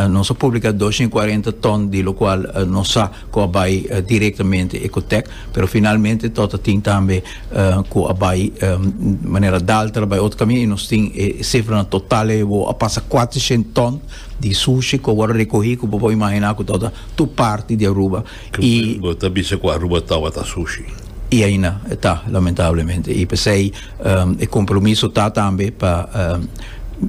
Nos a publica dos i cuarenta ton di locual nos sa cu a bay directamente Ecotec, pero finalmente tot a tin tambe cu a bay manera Daltra bay otro cami y nos tin e cifranan total ebo a pasa cuatrocientos ton di sushi cu a wor recogi cu bo por imagina cu tot a tur parti di Aruba y Bo ta bisa cu Aruba tawata sushi? Y aina ta lamentablemente y pesey. Um, e compromiso ta tambe pa um,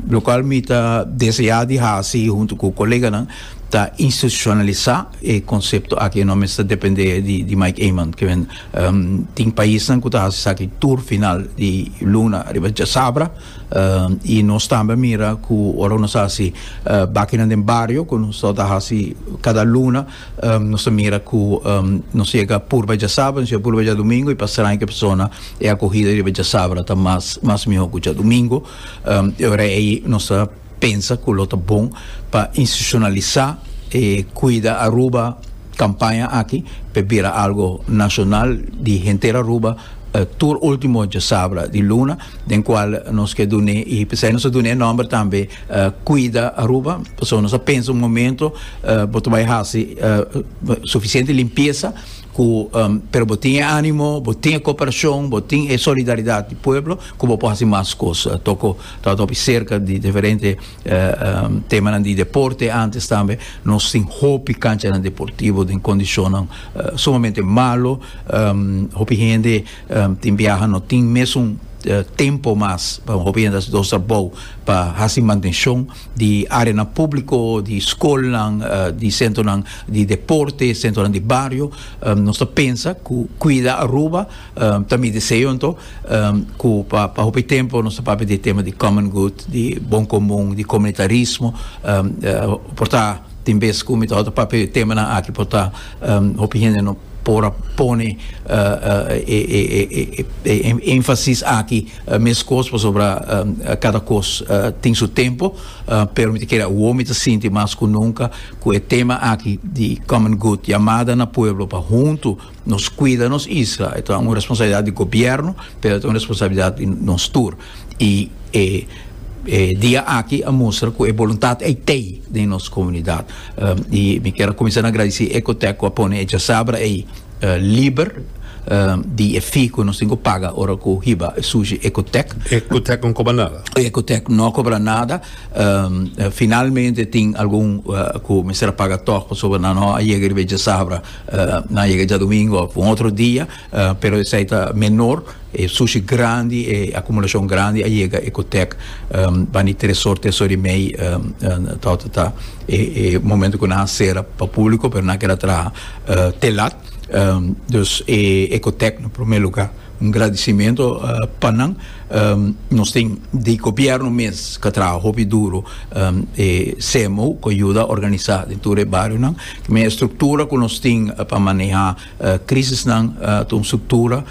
lo cual mi ta desea di hasi junto cu coleganan ta institucionalisa e concepto aki no mester depende di, di Mike Eman que men um, tin paisnan cu ta hasi saki tur final di luna riba ja sabra um, y nos tambe mira cu ora nos hasi uh, bakinan den barrio cu nos ta hasi cada luna Nos ta mira cu nos yega purba djasabra, nos yega purba djadumingo y pa sranke persona e acogida riba djasabra ta mas miho cu djadumingo. E ora ey nos ta pensa cu lo ta bon pa institucionalisa e Cuida Aruba campaña aki pa e bira algo nacional di henter Aruba tur ultimo djasabra di luna. den cual nos ke dun'é y pesey nos a dun'é e nomber tambe Cuida Aruba pasobra nos a pensa un momento bo ta bay haci suficiente limpieza cu pero bo tin e animo bo tin e cooperacion bo tin e solidaridad di pueblo cu bo por haci mas cos toco ta bay hopi cerca di diferente temanan di deporte antes tambe nos tin hopi canchanan deportivo den condicionnan sumamente malo hopi hende Tin biaha no tin mesun tempo mas pa un hopi hende hasi dos trabou pa hasi mantenshon di areanan públiko, di skolnan, di sentronan di deporte, sentronan di bario. Nos ta pensa ku kuida Aruba ta mi deseo anto ku pa pa hopi tempu nos ta papia di e tema di common good, di bon komun, di komunitarismo por ta. Tin bes ku mi ta hòrta papia di e temanan aki por ta hopi hende no por a pone e énfasis aki meskos pasobra kada kos tin su tempu pero mi ta kere awor mi ta sinti mas ku nunka ku e tema aki di common good yamada na pueblo pa huntu Nos cuida nos isla, e ta un responsabilidad di gobierno, pero e ta un responsabilidad di nos tur. Y e e dia aki a mustra cu e boluntad ei t'ei den nos comunidad. Um, y mi kier a cuminsa na agradeci Ecotec cu a pone e djasabra ei uh liber um di e fee cu nos tin cu paga ora cu hiba e sushi Ecotec. Ecotec no cobra nada? Ecotec no a cobra nada. Um, finalmente tin algun uh cu mester a paga toch pasobra nan no a yega riba e djasabra Nan a yega djadumingo of un otro dia, pero esai ta menor. E sushi grandi, e akumulashon grandi a yega Ecotec bani Tresor, Tresor i mei torta ta e momento ku nan a sera pa publiko, pero nan a keda traha te lat. Dus e Ecotec na prome lugar. Un gradicimento pa nan nos tin di gobierno mes ca traha hopi duro e CMO cu a yuda organisa den tur e barionan me e structura cu nos tin pa maneha crisisnan ta un structura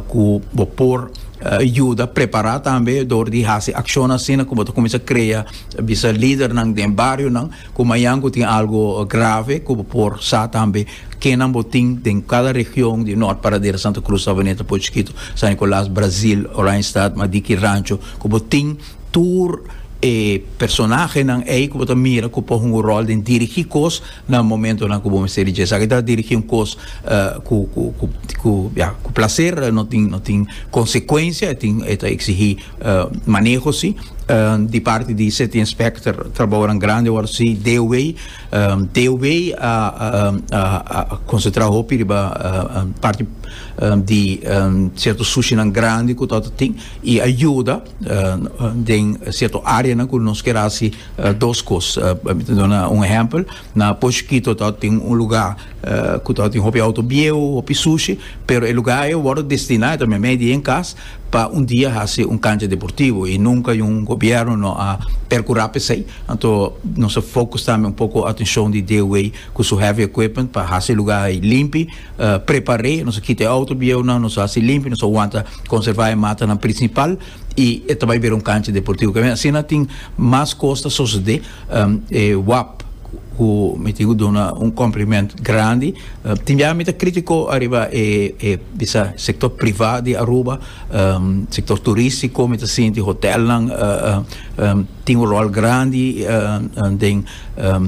cu bo por yuda prepara tambe dor di haci accionnan asina cu bo ta cuminsa crea bisa lidernan den barionan Ku mañan ku tin algu grave ku bo por sa tambe kenan bo tin den kada region di Nort Paradera, Santa Cruz, Savaneta, Puerto Chikito, San Nicolas, Brazil, Oranjestad, Madiki Rancho ku bo tin tur e personahenan ei ku bo ta mira ku por hunga rol den dirigi kos na momentonan ku bo mester di dje esaki ta dirigi un kos ku ku ku ya ku plaser no tin no tin konsekuensia e tin e ta eksigí maneho si di parti di city inspector trabaonan grandi awor si deaway deaway a concentra hopi riba parti di cierto sushinan grandi cu ta ta tin y a yuda den cierto areanan cu nos kier haci dos cos mi ta duna un ehempel Na Poshkito ta tin un luga ku ta tin hopi outo bieu, hopi sushi, pero e luga ei a wòrdu destiná, e ta meimei di en kas, pa un dia hasi un kancha deportivo i nunka un gobièrnu no a perkurá p'esei. Anto nos a fokus tambe un poko atenshon di DOW ku su heavy equipment pa hasi e luga ei limpi, prepar'é, nos a kita e outo bieunan, nos a hasi limpi, nos a wanta konservá e matanan prinsipal. y e ta bay bira un cancha deportivo kende asina tin mas cos ta sosode um, e wap cu mi tin cu duna un compliment grandi uh, tin bia mi ta critico arriba e e bisa sector privat di Aruba um, sector turistico mi ta sinti hotelnan uh, uh, um, tin un rol grandi uh, uh, den um,